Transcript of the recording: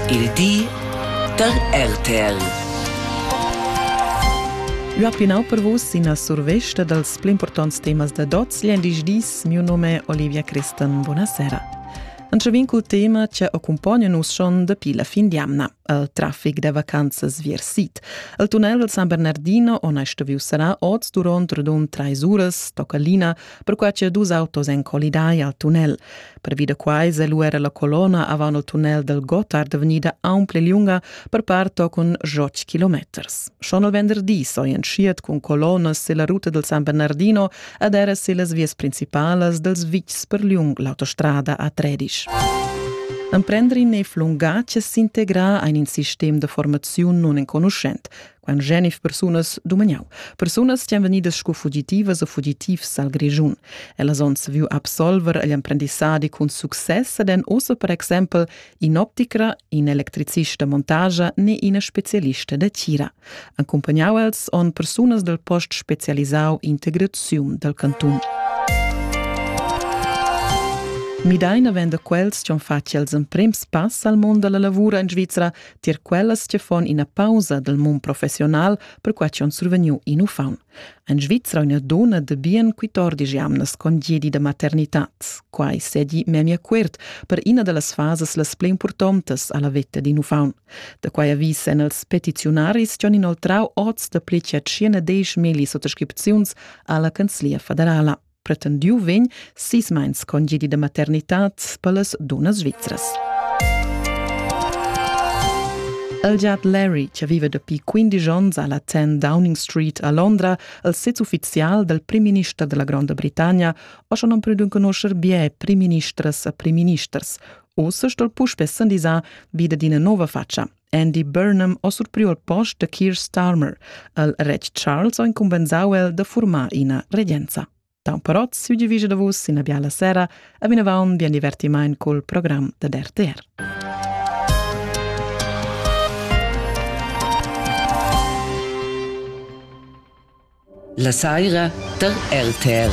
Il di da RTL. Ua plinau per vus ina survesta dals pli importants temas da dots gl'endisch dis. Miu nome è Olivia Christen. Buonasera. Antschavin cul tema che accompagna nus schon dapi la fin d'jamna al traffic da vacanzas vier sit. Al tunnel del San Bernardino, ona sto viu sarà oz durant radun trais uras, tocca Lina, perquai che dus autos èn collidai al tunnel. Pervi da quai è lu era la colonna avant il tunnel del Gotthard vegnida aunc pli lunga per part con joc kilometers. Schon il venderdi so entschiet cun colonnas silla ruta del San Bernardino ed era sillas vias principales dels vitgs per lung l'autostrada A13. Emprendrin ei flunga che s'integra ein in sistem de formaziun non enconuschent. Quant genif persunas dumagnau. Persunas stan vegnidas sco fugitivas e fugitivs al Grischun. Ellas onns viu absolver agl emprendissadi cun success ed en ossa per exempel in'opticra, in electricista montagia ne ina specialista da tira. Accompagnau els on persunas del post specialisau integraziun dal cantun. Midaina venda quels che han fatg els emprems pass al mondo della lavura in Svizzera tier quellas che fon ina pausa dal mund professional perquai ch'on survegniu in uffant. En Svizra una dona de bien 14 jamnas con diedi da maternitat. Quai sedi memia cuert per ina de las fases las pli importantes alla vetta din uffant. Da quai avvis en els petiziunaris John inoltrau oz de pli che 10 mili sottoscripziuns alla Canzlia federala. pretendiu vegn sis meins congedi da maternitad per las dunnas svizras. El giat Larry, che vive dapi 15 onns alla 10 Downing Street a Londra, il sez ufficial del prim-minister della Gronda Britannia, o schon non pudun conoscer bie prim-ministres e prim-ministers, o se stol puspè sandisar vide d'ina nova faccia. Andy Burnham ha surpriu al post da Keir Starmer. El retg Charles ha incumbensau el da formar ina regenza. Tau però siu divisa da vus ina biala sera e vinavon bien divertiment col program da RTR. La saira der RTR.